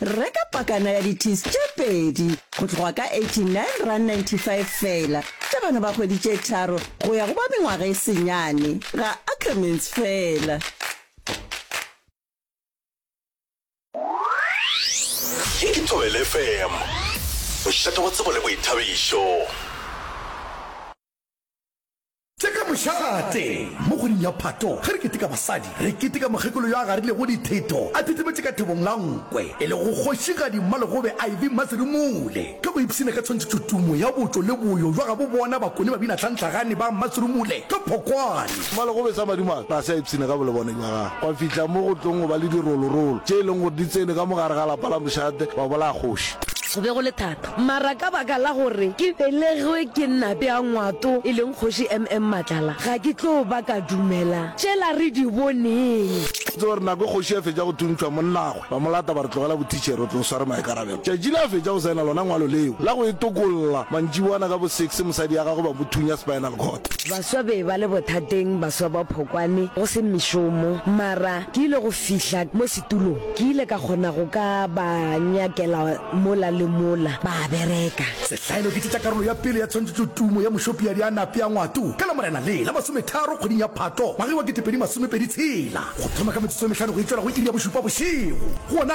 Reka pakana ya di-teas tše pedi go tloga ka R89.95 fela tša bana ba kgwedi tše tharo go ya go ba mengwaga e senyane, ga Ackermans fela. Ye ke Thobela FM, bošata bja tsebo le boithabišo. Tša ka mošate. Mo kgweding ya Phato, ge re keteka basadi, re keteka mokgekolo yo a garilego ditheto a thithimetše ka thobong la nkwe, e lego Kgošigadi Mmalegobe Ivy Mmasirumule. Ka go ipshina ka tshwantšhetšo tumo ya botšo le boyo bja gabo bona bakone babina tlhantlhagane ba Mmasirumule ka phokwane. Mmalegobe sa madimabe ga se a ipshina ka bolebone bja gagwe, gwa fihla mo go tlong go ba le dirolorolo tše e leng gore di tsene ka mo gare ga lapa la mošate, ba bolaya kgoši. Go be go le thata, mara ka baka la gore ke belegwe ke Nnape ya Ngwato e leng Kgoši MM Matlala, ga ke tlo ba ka dumela tšela re di boneng. Tseba gore nako e kgoši a fetša go thuntšhwa, monnagwe ba mo lata ba re, Tlogela bothitšhere, o tlo o sware maikarabelo. Tšatši le a fetša go saena lona ngwalo leo la go e tokolla, mantšiboana ka bo six mosadi ya gagwe ba mo thunya spinal cord. Baswa be ba le bothateng, baswa ba Phokwane, go se mešomo, mara ke ile go fihla mo. Tulo, Ke ile ka kgona go ka ba nyakela mola le mola, ba a bereka. Sehlaelo, Ke tšetša karolo ya pele ya tshwantšhetšo tumo ya mošopiadi a nape a ngwato ka Lamorena le la masometharo kgweding ya Phatlo ngwageng wa ketepedi masomepedi tshela, go thoma ka metsotso e mehlano go e tšwela go iri ya bošupa bošego. Gona,